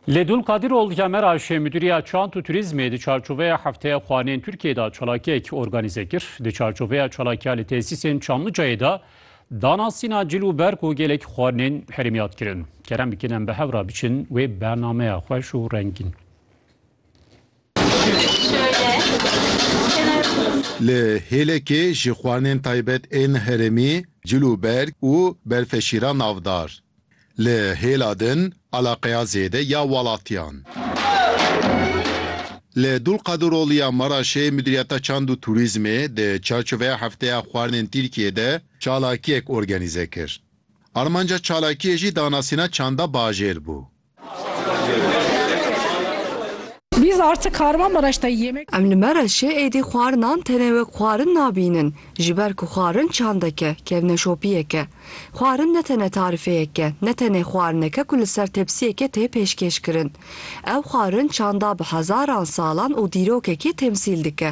Ledun Kadirol ya Meraşê Müdiriya Çant û Turizmê di çarçoveya Hefteya Xwanên Tirkiyeyê de çalakiyek organîze kir. Di çarçoveya çalakiya li tesîsên Çamlıcayê de dana sîna cil û berk û gelek xwanên herêmî hat kirin. Kerem bikin em bi hev re biçin wê bernameya xweş û rengîn. Li Hêlekê ji xwanên taybet ên herêmî cil û berg û berfeşîra navdar li hêla din eleqeya zêde ya welatiyan. Li Dulqadiroliya Maraşê Mudîriyeta Çand û Turîzmê di çarçoveya Hefteya Xwarinên Tirkiyeyê de çalakiyek organîze kir. Armanca çalakiyê jî danasîna çanda bajêr bû. Em li Mereşê êdî xwarinan tenê wek xwarin nabînin, ji ber ku xwarin çandek e, kevneşopiyek e. Xwarin ne tene tarifeyek e, ne tenê xwarinek e ku li ser tepsiyekê tê pêşkêş kirin. Ev xwarin çanda bi hezaran salan û dîrokekî temsîl dike.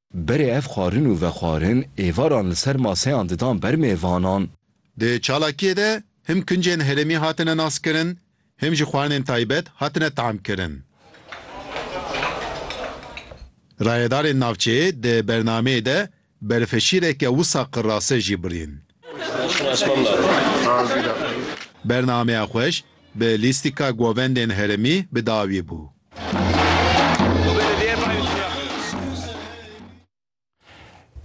Berê ev xwarin û vexwarin êvaran li ser maseyan didan ber mêvanan. Di çalakiyê de him kincên herêmî hatine naskirin, him jî xwarinên taybet hatine tamkirin. Rayedarên navçeyê di bernameyê de berfeşîreke wisa qirase jî birîn. Bernameya xweş bi lîstika govendên herêmî bi dawî bû.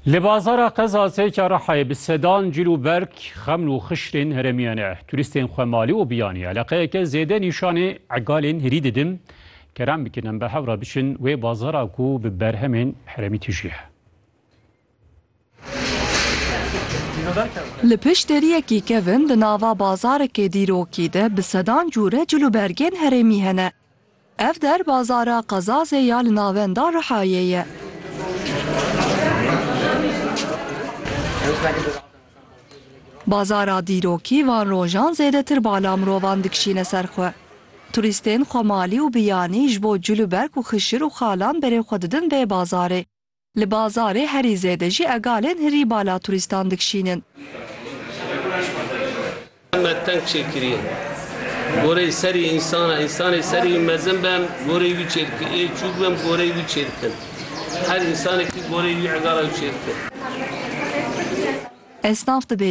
Li bazara qezasê Karahayê bi sedan cîl û berg, xeml û xiştên herêmiyan e. Turîstên xwe malî û biyanî eleqeyeke zêde nîşanê egalên hirî didin. Kerem bikin em bi hev re biçin wê bazara ku bi berhemên herêmî tije. Li pişt deriyekî kevin di nava bazarekê dîrokî de bi sedan cûre cil û bergên herêmî hene. Ev der bazara Qezazê ya li navenda Rihayê ye. Bazara dîrokî van rojan zêdetir bala mirovan dikişîne ser xwe. Turîstên xwemalî û biyanî ji bo cil û berg û xişir û xalan berê xwe didin vê bazarê. Li bazarê herî zêde jî egalên hirî bala turîstan dikşînin. Me teng çêkiriye. Goreyê serî însan e. Însanê serî wî mezin be em goreyê wî çêdikin. Ê çûk be em goreyê wî çêdikin. Her însanekî goreyê wî egala wî çêdikin. Esnaf dibêje.